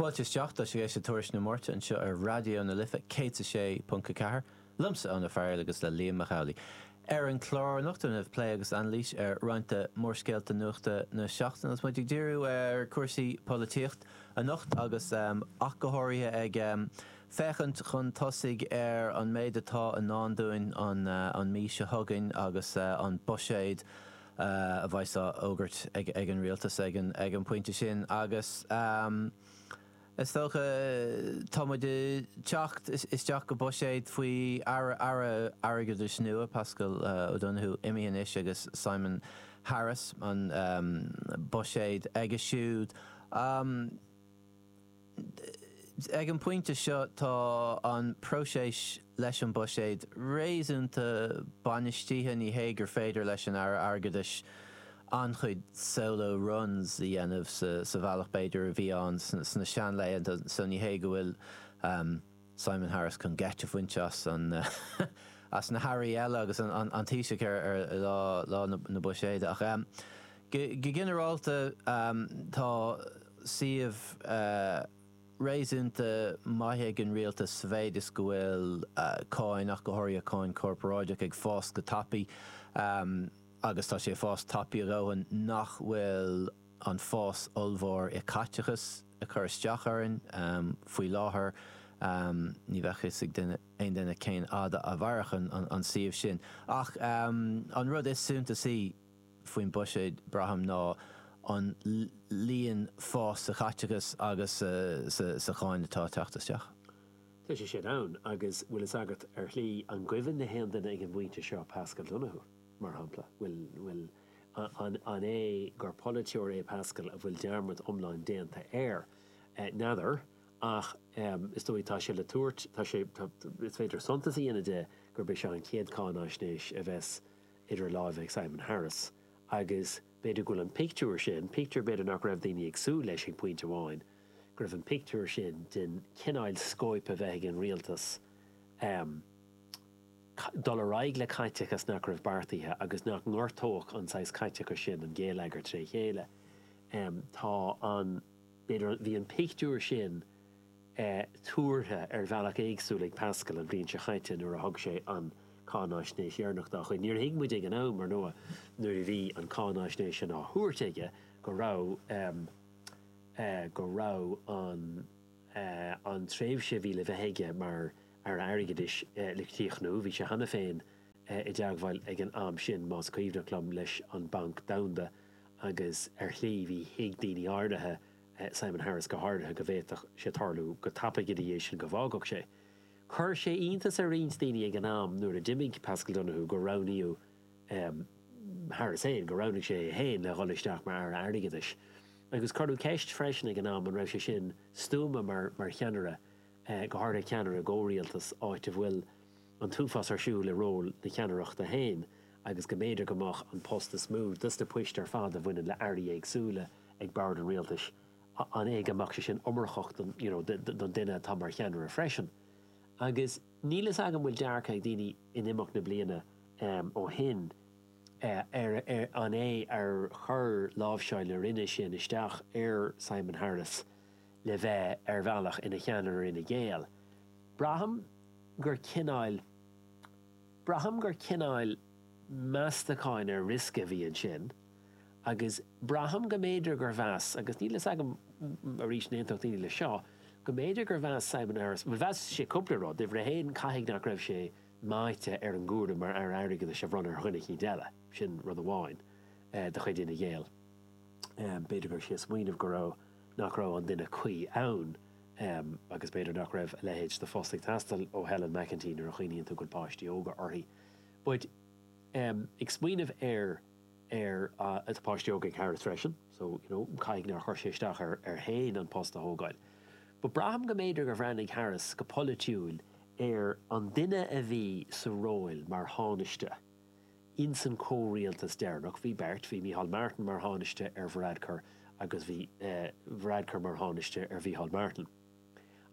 Fáilte isteach, tá sibh ag éisteacht le Tuairisc na Máirte anseo ar Raidió na Life 106.4, liomsa, Eoin Ó Fearghaíl, agus le Liam Mac Amhlaigh. Ar an chlár anocht déanfar plé agus anailís ar roinnt de mhórscéalta nuachta na seachtaine agus muid ag díriú ar chúrsaí polaitíocht anocht agus ach go háirithe ag féachaint chun tosaigh ar an méid atá i ndán dúinn an mhí seo chugainn agus an buiséad a bheidh á fhógairt ag an rialtas ag an bpointe sin agus is dócha tá muid ag teacht isteach go buiséad faoi Aire Airgeadais nua, Paschal Donohoe imithe anois agus Simon Harris, an buiséad aige siúd. Ag an bpointe seo tá an próiseas leis an bhuiséad réasúnta bainistithe, ní hé gur féidir leis an Aire Airgeadais an-chuid solo runs a dhéanamh sa bhealach b'fhéidir a bhí ann sna seanlaethanta, so ní hé go bhfuil. Simon Harris chun geit a bhaint as na hairí eile agus an Taoiseach ar lá na buiséide. Ach go ginearálta tá suíomh réasúnta maith ag an rialtas sa mhéid is go bhfuil cáin, ach go háirithe cáin corparáideach, ag fás go tapaidh. Agus tá sé ag fás tapaidh a dhóthain nach bhfuil an fás ollmhór i caiteachas. ag cur isteach orainn. Faoi láthair ní bheadh a fhios ag aon duine cén fhad a mhairfeadh an suíomh sin. Ach an rud is suntasaí faoin bhuiséad, braithim, ná an líon fás sa chaiteachas agus sa cháin atá ag teacht isteach. Tá sé sin ann, agus bhfuil a fhios agat, ar shlí, an gcuimhin le haon duine ag an bpointe seo Paschal Donohoe, mar shampla? Bhfuil? An é gur polaiteoir é Paschal a bhfuil dearmad iomlán déanta air? N'fheadar. Ach is dóigh tá sé le tabhairt, tá sé, is féidir suntas a dhéanamh de gurb é seo an chéad cháinaisnéis a bheidh idir lámha ag Simon Harris. Agus b'fhéidir go bhfuil an pictiúr sin, pictiúr b'fhéidir nach raibh daoine ag súil leis ag pointe amháin, go raibh an pictiúr sin den chineál scóip a bheith ag an rialtas, dul ar aghaidh le caiteachas nach raibh beartaithe agus nach ngortódh an saghas caiteachais sin an géilleagar tré chéile. Tá an, b'fhéidir, bhí an pictiúr sin tuartha ar bhealach éagsúil ag Paschal an bhliain seo chaite nuair a thug sé an cháinaisnéis dheireanach dá chuid. Níor thuig muid ag an am, ar ndóigh, nuair a bhí an cháinaisnéis sin á thabhairt aige, go raibh, go raibh an, an tréimhse a bhí le bheith aige mar Aire Airgeadais le críochnú. Bhí sé cheana féin i dteagmháil ag an am sin, más cuimhneach liom, leis an Banc Domhanda agus ar shlí bhí, thuig daoine áirithe, Simon Harris go háirithe, go bhféadfadh sé tarlú go tapaidh ina dhiaidh sin go bhfágfadh sé. Chuir sé iontas ar roinnt daoine ag an am nuair a d'imigh Paschal Donohoe gur roghnaíodh Harris féin, gur roghnaigh sé é féin le dhul isteach mar Aire Airgeadais. Agus cuireadh ceist freisin ag an am an raibh sé sin stuama mar cheannaire go háirithe ceannaire i gcomhrialtas, áit a bhfuil an t-uafás ar siúl i ról na ceannaireachta féin, agus go mb'fhéidir go mbeadh an post is mó dos na poist ar fad a bhaineann le airí éagsúla ag bord an rialtais, an é go mbeadh sé sin iomarcach don you know don duine atá mar cheannaire freisin? Agus níl fhios agam bhfuil dearcadh ag daoine in imeacht na bliana ó shin ar an é ar chuir láimhseáil na roinne sin isteach ar Simon Harris, le bheith ar bhealach ina cheannaire Fhine Gael. Braithim gur cineáil, braithim gur cineáil meastacháin ar riosca a bhí ansin agus braithim go mb'fhéidir gur mheas, agus níl a fhios agam, arís an aontódh daoine leis seo, go mb'fhéidir gur mheas Simon Harris, bhuel mheas sé cúpla rud, uimhir a haon caithfidh nach raibh sé meáite ar an gcúram mar Aire Airgeadais a bhronnadh ar dhuine eicínt eile, sin rud amháin de chuid Fhine Gael, b'fhéidir go raibh sé ag smaoineamh go raibh. nach raibh an duine cuí ann, agus b'fhéidir nach raibh a leithéid de phost ag teastáil ó Helen McEntee nuair a chuimhníonn tú go bhfuil páistí óga uirthi. But, em, ag smaoineamh ar, ar a, tá páistí óga ag Harris freisin, so, you know, caithfidh nár chuir sé isteach air, air féin an post a thógáil. But braithim go mb'fhéidir gur bhreathnaigh Harris go polaitiúil ar an duine a bhí sa róil mar Thánaiste, Ins an comhrialtas deireanach bhí beirt, bhí Micheál Martin mar Thánaiste ar Varadkar agus bhí Varadkar mar Thánaiste ar Mhicheál Martin.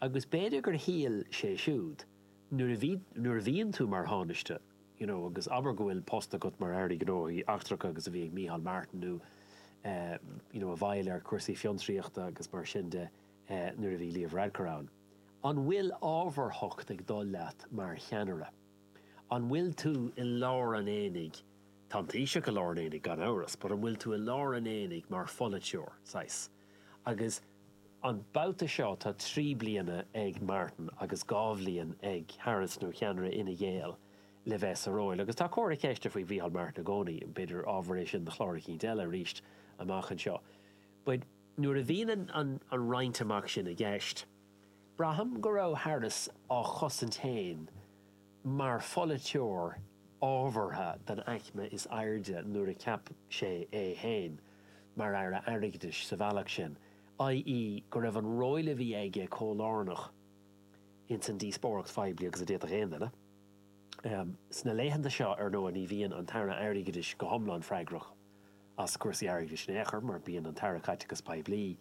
Agus b'fhéidir gur shíl sé siúd, nuair a bhí, nuair a bhíonn tú mar Thánaiste, you know, agus abair go bhfuil post agat mar Aire Gnóthaí Eachtracha mar a bhí ag Micheál Martin nó eh, you know, i bhfeighil ar chúrsaí fiontraíochta agus mar sin de nuair a bhí Leo Varadkar ann, an bhfuil ábharthacht ag dul leat mar cheannaire? An bhfuil tú i lár an aonaigh? Tá an Taoiseach i lár an aonaigh, gan amhras, but an bhfuil tú i lár an aonaigh mar pholaiteoir, saghas? Agus an babhta seo tá trí bliana ag Martin agus dhá bhliain ag Harris, nó cheannaire Fhine Gael, le bheith sa róil. Agus tá comhartha ceiste faoi Mhícheál Martin i gcónaí, b'fhéidir ábhar é sin do chlár eicínt eile arís amach anseo. But nuair a bhíonn an roinnt amach sin i gceist, Braithim go raibh Harris á chosaint féin mar pholaiteoir ábhartha den aicme is airde nuair a cheap sé é féin mar Aire Airgeadais sa bhealach sin, ii, go raibh an ról a bhí aige chomh lárnach ins an díospóireacht phoiblí agus a d'fhéadfadh aon duine. Sna laethanta seo, ar ndóigh, ní bhíonn an tAire Airgeadais go hiomlán freagrach as cúrsaí airgeadais in aon chor mar bíonn an tAire Caiteachais Poiblí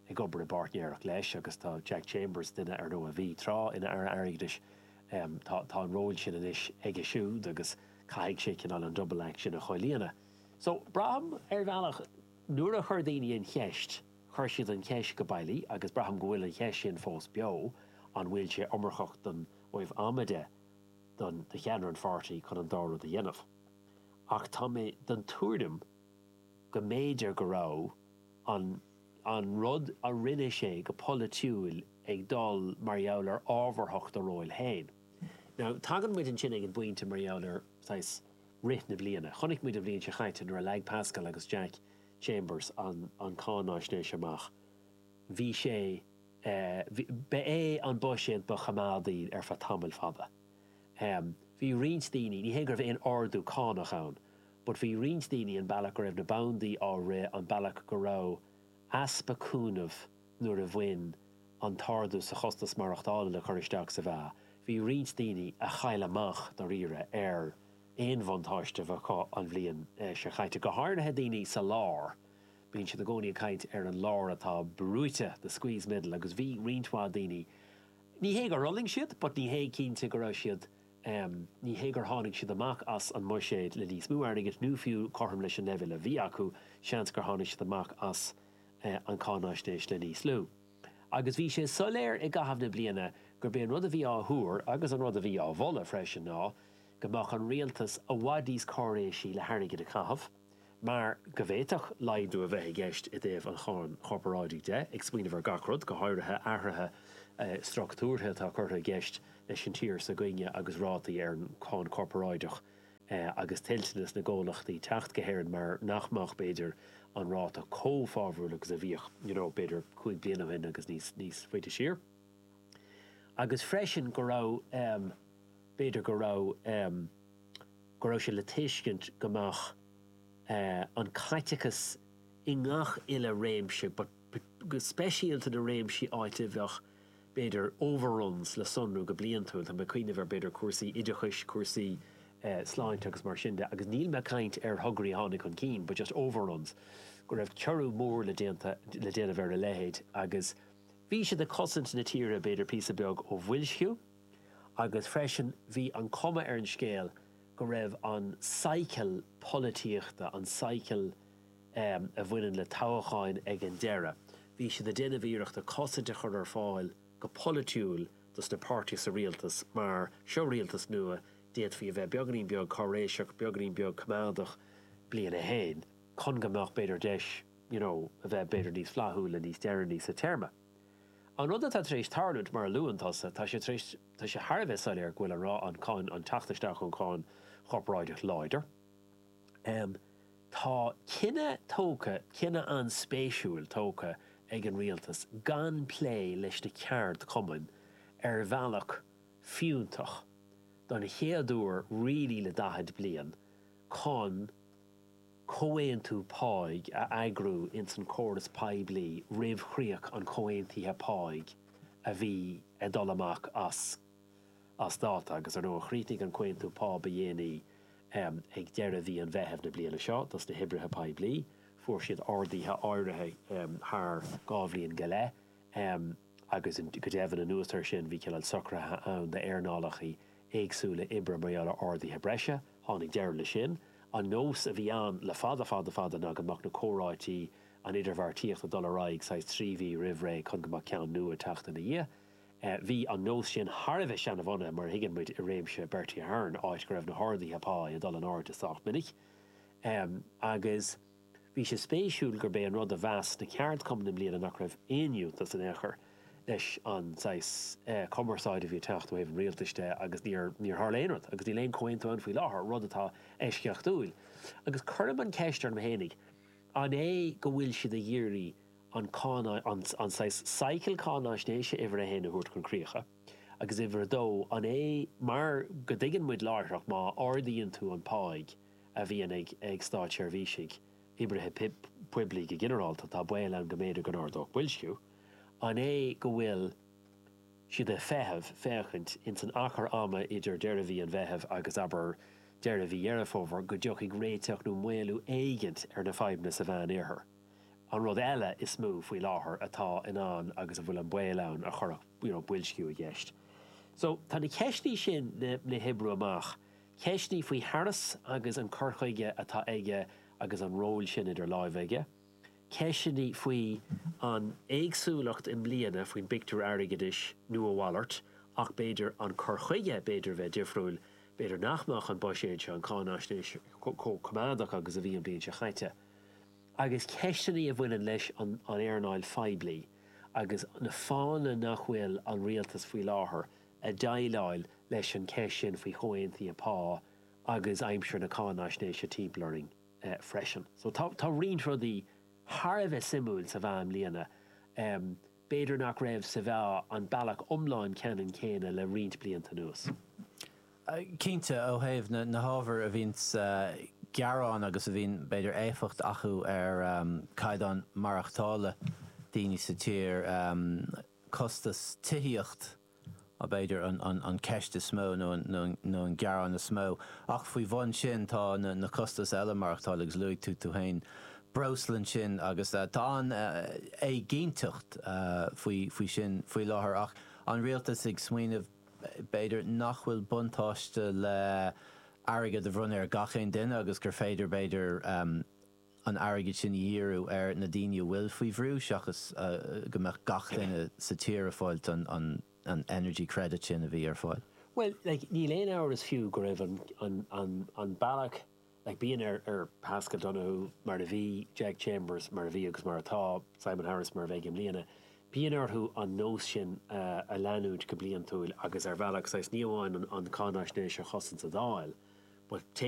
ag obair i bpáirtnéireacht leis agus tá Jack Chambers, duine ar ndóigh a bhí tráth ina Aire Airgeadais, tá tá an ról sin anois aige siúd agus caithfidh sé cineál an double action a chomhlíonadh. So, braithim, ar bhealach, nuair a chuir daoine an cheist, chuir siad an cheist go bailí agus braithim go bhfuil an cheist sin fós beo, an bhfuil sé iomarcach don uaimh ama de do do cheannaire an pháirtí chun an dá rud a dhéanamh? Ach tá mé den tuairim go mb'fhéidir go raibh an. an rud a rinne sé go polaitiúil ag dul mar gheall ar ábharthacht a róil féin. Now, tagann muid ansin ag an bpointe mar gheall ar, saghas, rith na bliana. Chonaic muid an bhliain seo chaite nuair a leag Paschal agus Jack Chambers an an cáináisnéis amach, bhí sé eh, ba é an buiséad ba choimeádaí ar feadh tamaill fada. Em, bhí roinnt daoine, ní hé go raibh aon ardú cánach ann, But bhí roinnt daoine an bealach go raibh na bandaí á rith, an bealach go raibh easpa cúnaimh nuair a bhí an t-ardú sa chostas maireachtála le cur isteach sa mheá, bhí roinnt daoine a chaill amach dáiríre ar aon bhuntáiste a bheadh acu an bhliain seo chaite, go háirithe daoine sa lár, bíonn siad i gcónaí ag caint ar an lár atá brúite, the squeezed middle, agus bhí roinnt mhaith daoine, ní hé gur fhulaing siad but ní hé cinnte go raibh siad Ní hé gur tháinig siad amach as an mbuiséad le níos mó airgid nó fiú cothrom leis an leibhéal a bhí acu, seans gur tháinig siad amach as an cháinaisnéis le níos lú. Agus bhí sé soiléir i gcaitheamh na bliana gurb é an rud a bhí á thuar, agus an rud a bhí á mholadh freisin, ná go mbeadh an rialtas i bhfad níos cáiréisí le hairgead a chaitheamh. mar go bhféadfadh laghdú a bheith i gceist i dtaobh an cháin chorparáidigh de, ag smaoineamh ar gach rud, go háirithe athruithe structúrtha atá curtha i gceist leis an tír s'againne agus rátaí ar an cháin chorparáideach agus toilteanas na gcomhlachtaí teacht go hÉirinn mar nach mbeadh, b'fhéidir, an ráta chomh fabhrach agus a bhíodh, you know, b'fhéidir cúig bliana ó shin agus níos, níos faide siar. Agus freisin go raibh, b'fhéidir go raibh. go raibh sé le tuiscint go mbeadh, e, an caiteachas i ngach uile réimse, but go speisialta na réimsí áit a bheadh, b'fhéidir, overruns le sonrú go bliantúil, tá mé ag cuimhneamh ar, b'fhéidir, cúrsaí oideachais, cúrsaí sláinte agus mar sin de, agus níl mé ag caint ar thograí a tháinig chun cinn, but just overruns, go raibh ciorrú mór le déanta, le déanamh ar a leithéid agus bhí siad ag cosaint na tíre, b'fhéidir, píosa beag ó bhoilsciú. agus freisin bhí an cuma ar an scéal go raibh an cycle polaitíochta, an cycle a bhaineann le toghacháin ag an deireadh, bhí siad ag déanamh iarrachta cosaint a chur ar fáil go polaitiúil dos na páirtithe sa rialtas mar, seo rialtas nua, d'fhéadfaí a bheith beagainín beag cáiréiseach, beagainín beag coimeádach, bliain a haon, chun go mbeadh b'fhéidir deis, you know, a bheith b'fhéidir níos flaithiúla níos deireanaí sa téarma. An rud atá tar éis tarlúint, mar a luann tusa, tá sé tar éis, tá sé thar a bheith soiléir go bhfuil an ráta cáin, an teacht isteach an cháin chorparáideach láidir. Tá cinneadh tógtha, cinneadh an-spéisiúil tógtha ag an rialtas gan plé leis na ceardchumainn ar bhealach fiúntach, don chéad uair really le 40 bliain, chun. comhaontú páigh a eagrú ins an córas poiblí roimh chríoch an chomhaontaithe páigh a bhí ag dul amach as as dáta, agus ar ndóigh chríochnaigh an comhaontú pá ba dhéanaí ag deireadh mhí an Mheithimh na bliana seo dos na hoibrithe poiblí. Fuair siad arduithe áirithe thar dhá bhliain go leith agus go deimhin anuas ar sin bhí cineál socraithe ann d'earnálachaí éagsúla oibre mar gheall ar arduithe breise. Tháinig deireadh le sin. An nós a bhí ann le fada fada fada ná go mbeadh na comhráití, an idirbheartaíocht ag dul ar aghaidh saghas trí mhí roimh ré chun go mbeadh ceann nua ag teacht ina dhiaidh. Bhí an nós sin thar a bheith seanabhunaithe, mar a thuigeann muid, i réimeas Bertie Ahern, áit go raibh na harduithe pá ag dul in airde sách minic agus, Bhí sé spéisiúil gurb é an rud a mheas na ceardchumainn i mbliana nach raibh aon fhiúntas in aon chor leis an saghas cumarsáide a bhí ag teacht ó thaobh an rialtais de agus níor tharla aon rud agus níl aon chomhaontú ann faoi láthair, rud atá eisceachtúil. Agus cuirim an cheist orm fhéinig, an é go bhfuil siad ag iarraidh an cáin, an saghas cycle cáináisnéise uimhir a haon a thabhairt chun críocha? Agus uimhir a dó, an é mar go dtuigeann muid láithreach má ardaíonn tú an páigh, a bhíonn ag státseirbhísigh, oibrithe poiblí go ginearálta, tá baol ann go mb'fhéidir go n-ardódh boilsciú. An é go bhfuil siad ag feitheamh, féachaint, ins an achar ama idir deireadh mhí an Mheithimh agus, abair, deireadh mhí Dheireadh Fómhair, go dtiocfaidh réiteacht nó maolú éigint ar na fadhbanna sa Mheán-Oirthear? An rud eile is mó, faoi láthair, atá in ann agus a bhfuil an baol ann a chuirfeadh, you know, boilsciú i gceist. So, tá na ceisteanna sin le hoibriú amach Ceisteannaí faoi Harris agus an cur chuige atá aige agus an ról sin idir láimhe aige. Ceisteannaí faoi an éagsúlacht i mbliana faoin bpictiúr airgeadais nó a mhalairt ach b'fhéidir an cur chuige b'fhéidir a bheith difriúil, b'fhéidir nach mbeadh an buiséad seo, an cháinaisnéis seo, chomh coimeádach agus a bhí an bhliain seo caite. Agus ceisteanna a bhaineann leis an éarnáil phoiblí agus na fáthanna nach bhfuil an rialtas faoi láthair, ag déileáil leis an gceist sin faoi chomhaontuithe pá agus aimsir na cáinaisnéise timpeall orainn freisin. So tá roinnt rudaí thar a bheith suimiúil sa mheá i mbliana. B'fhéidir nach raibh sa mheá an bealach iomlán ceannann céanna le roinnt blianta anuas. Cinnte, ó thaobh na hábhair a bhíonn ag gearán agus a bhíonn, b'fhéidir, éifeacht acu ar chaighdeán maireachtála daoine sa tír, costas tithíochta b'fhéidir an cheist is mó nó an gearán is mó ach faoi bhun sin tá na costais eile maireachtála agus luaigh tú tú féin breosla ansin agus tá an-éiginnteacht faoi sin faoi láthair ach an rialtas ag smaoineamh b'fhéidir nach bhfuil buntáiste le airgead a bhronnadh ar gach aon duine agus gur féidir b'fhéidir an airgead sin a dhíriú ar na daoine a bhfuil faoi bhrú seachas go mbeadh gach duine sa tír ag fáil an energy credit sin a bhí ar fáil. Bhuel, like, níl aon amhras fiú go raibh an bealach, like, bíonn ar Paschal Donohoe, mar a bhí, Jack Chambers, mar a bhí agus mar atá, Simon Harris, mar a bheidh i mbliana, bíonn orthu an nós sin a leanúint go bliantúil agus, ar bhealach, saghas, ní amháin an cáinaisnéis a chosaint sa Dáil but,